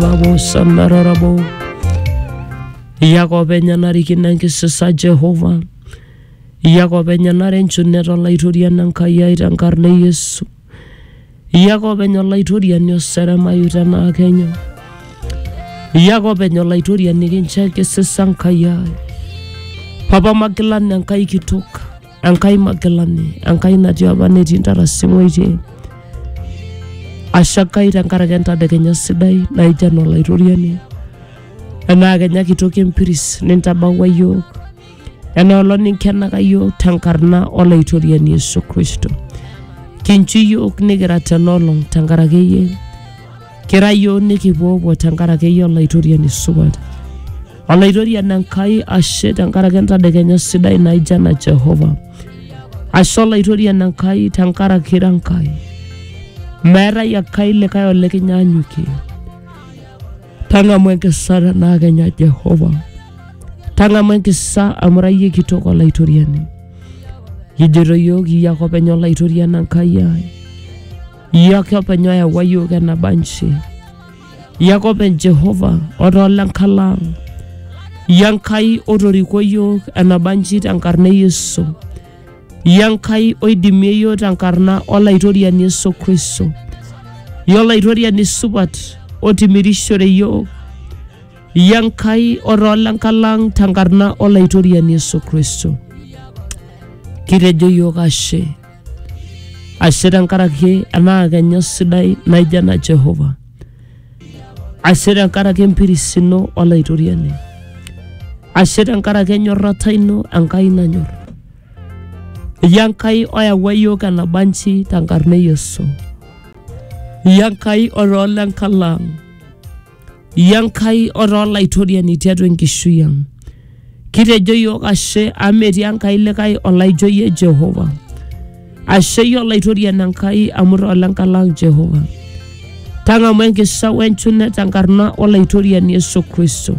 Babo samararabo Yakob enyanarikino enkisisa Jehova Yakob enyanare enchunet olaitoriani Enkai ai tenkarna e Yesu Yakob enya olaitoriani oseremayu tenaa kenya Yakob enya olaitoriani kincho enkisisa Enkai ai Papa magilana Enkai kitok Enkai Magilani, Enkai natii apa netii ntarasi tewueji ashe Enkai tenkaraki entadekenya sidai naija enaa olaitoriani enaa kenya kitoki empiris nintabaua iyiook enaa olong ninkenaka iyiook tenkarna olaitoriani Yesu Kristo kinchu iyiook nikira tenolong tenkaraki iyie kira iyiook nikipuopuo tenkaraki iyie olaitoriani supat Olaitoriani Enkai, ashe tenkaraki entadekenya sidai naijo ena Jehova. Ashe Olaitoriani Enkai tenkaraki ira Enkai. Meetae Enkai likae olikinyaanyukie. Tang'amu enkisa tenaa kenya Jehova. Tang'amu enkisa amu ira iyie kitok Olaitoriani. Ijoito iyiook iyie ake openy Olaitoriani Enkai ai. Iyie ake openy oyawua iyiook enaba nji. Yakop en Jehova otoo lenkalang Yankai otoriko iyiook enabanji tenkarna e Yesu Yankai oidimie iyiook tenkarna olaitoriani Yesu Kristo yolaitoriani supat otimirishore iyiook Yankai otoo lenkalang tenkarna olaitoriani Yesu Kristo kitejo iyiook ashe ashe tenkaraki ena kenya sidai naijo ena jehova ashe tenkaraki empiris ino olaitoriani ashe tenkaraki enyorrata ino enkai nanyor iyie enkai oyawua iyiook enabanji tenkarna e yesu iyie enkai otoolo enkalaang iyie Enkai otaa olaitoriani tiatua enkishui ang. Kitejo iyiook ashe amu metii Enkai likae olaijo iyie Jehova. Ashe iyie olaitoriani Enkai amu taa olenkai lang Jehova. Tang'amu enkisha wenchune tenkarna olaitoriani Yesu Kristo.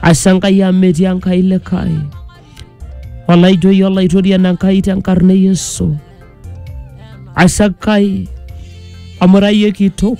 Ashe Enkai amu metii Enkai likae olaijo iyie olaitoriani Enkai tenkarna e Yesu. Ashe Enkai amu ira iyie kitok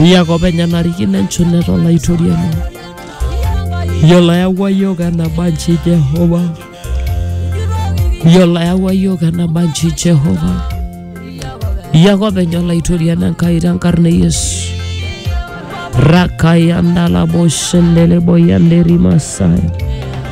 Iyiak openy enarikino enchula to Laitoriani. Iyiolo ayawua iyiook enaba nji Jehova. Iyiolo ayawua iyiook enaba nji Jehova. Iyiak openy Olaitoriani Enkai tenkarna e Yesu. Rakayandala boshendelebo yanderima saya.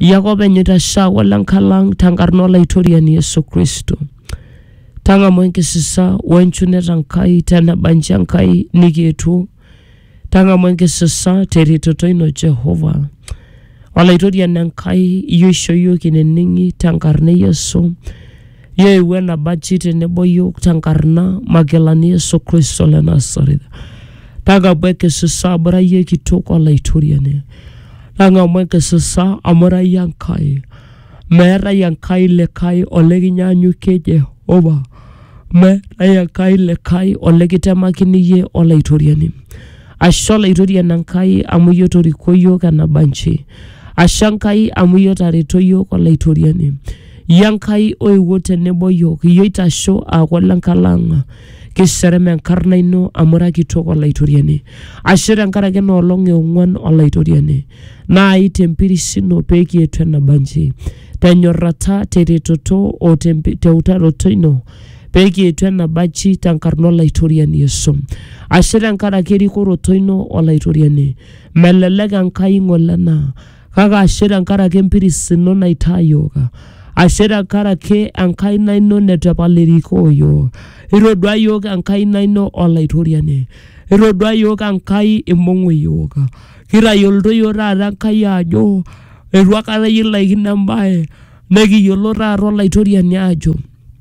Iyaka openy oitashaa olenkalang tenkarna olaitoriani Yesu Kristo. Tang'amu enkisisa wenchunet Enkai teneba nji Enkai nikietuo. Tang'amu enkisisa teretoto ino Jehova. Olaitoriani Enkai, iyie oisho iyiook ineneng'i tenkarna e Yesu. Yeewuo enabachi tenebo iyiook tenkarna Magilani Yesu Kristo le Nasareth. Tang'amu enkisisa amu ira iyie kitok olaitoriani. Tang'amu enkisisa amu ira iyie Enkai. Meetae Enkai likae olekinyaanyukie Jehova. Meetae Enkai likae olikitemakini iyie olaitoriani. Ashe olaitori enankai amu iyie otoriko iyiook enabanji. Ashe Enkai amu iyie otareto iyiook olaitoriani. Iyie Enkai oewuo tenebo iyiook, iyie oitasho aaku ole nkalo ang'. Kisherem enkarna ino amu ira kitok olaitoriani. Ashe tenkaraki ena olong e ong'uan olaitoriani. Naai tempiris ino pee kietuo enabanji. Tenyorrata, teretoto o teutaroto ino pee kietu ena bachi tenkarna Olaitoriani Yesu. Ashe tenkaraki erikoroto ino Olaitoriani. Melelek Enkai ng'ole ena, kake ashe tenkaraki empiris ino naitaa iyiook. Ashe tenkaraki enkaina ino neitu epal erikoo iyiook. Itodua iyiook enkaina ino Olaitoriani. Itodua iyiook Enkai imbung'u iyiook. Kitayioloito iyiook taata Enkai aajo eitu aikata kilaikino embae nekiyiolo taata Olaitoriani aajo